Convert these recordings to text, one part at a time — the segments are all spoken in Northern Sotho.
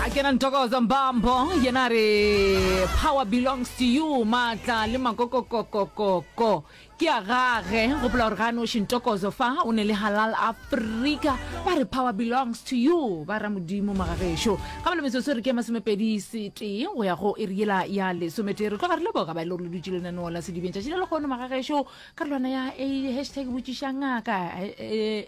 a kena ntokoza mbambo yena re power belongs to you maatla le makokokokokoko ke a gage gopola gore ga a noši ntokozo fa o ne le halal afrika ba re power belongs to you ba ra modimo magagešo ga ba le metsotso re ke masomepedi setee go ya go e re yela ya lesometee re tloga re leboga ba e le gore le dutse lenaneo la sedibeng tšatši le lekgono magagešo karolwana ya a hashtag botšiša ngaka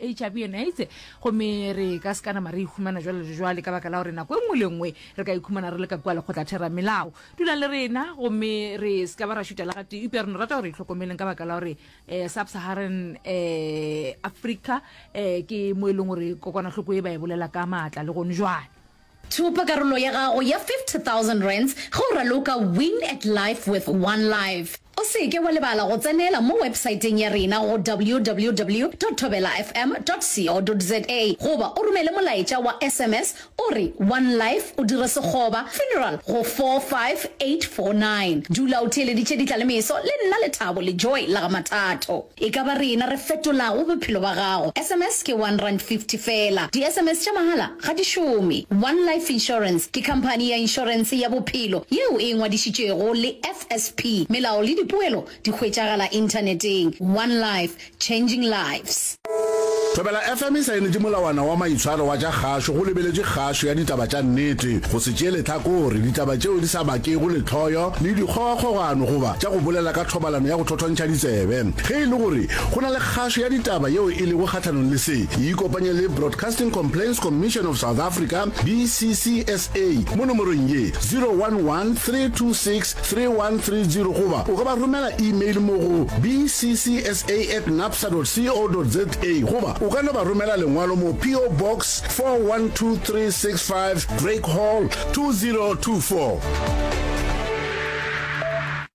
hiv and aids gomme re ka se ka nama re ikhumana jwale le jwale ka baka la gore nako e nngwe le nngwe re ka ikhumana re le ka kua lekgotla theramelao dula le rena gomme re se ka ba ra šuta le gatee upja re no rata gore itlhokomeleng ka baka la gore um sub-saharan um africa um ke mo e leng gore kokwanahloko e ba e bolela ka maatla le gone jwale Thopa karolo ya gago ya R50,000 ge o raloka Win at Life with One Life. O se ke wa lebala go tsenela mo websaeteng ya rena go www.thobelafm.co.za goba o romele molaetša wa sms o re One Life o dire sekgoba, funeral, go 45849. Dula o theeleditše ditla le meso le nna Lethabo Lejoe la ga Mathato. E ka ba rena re fetolago bophelo ba gago. SMS ke one rand fifty fela. Di SMS tša mahala ga di šome. One Life Insurance ke khamphani ya inšorense ya bophelo yeo e ngwadišitšwego le FSP. Melao le dipoelo di hwetšagala inthaneteng. One Life, changing lives. Thobela FM e saenetše molawana wa maitshwaro wa tša kgašo go lebeletšwe kgašo ya ditaba tša nnete, go se tšee lehlakore, ditaba tšeo di sa bakego lehloyo le dikgogakgogano goba tša go bolela ka thobalano ya go Thwantšha ditsebe. Ge e le gore go na le kgašo ya ditaba yeo e lego kgahlanong le se, ikopanye le Broadcasting Complaints Commission of South Africa, BCCSA, mo nomorong ye, 011-326-3130 goba o ka ba romela email mo go bccsa at napsa dot co dot za goba o ka no ba romela lengwalo mo PO Box 412365, Drake Hall, 2024.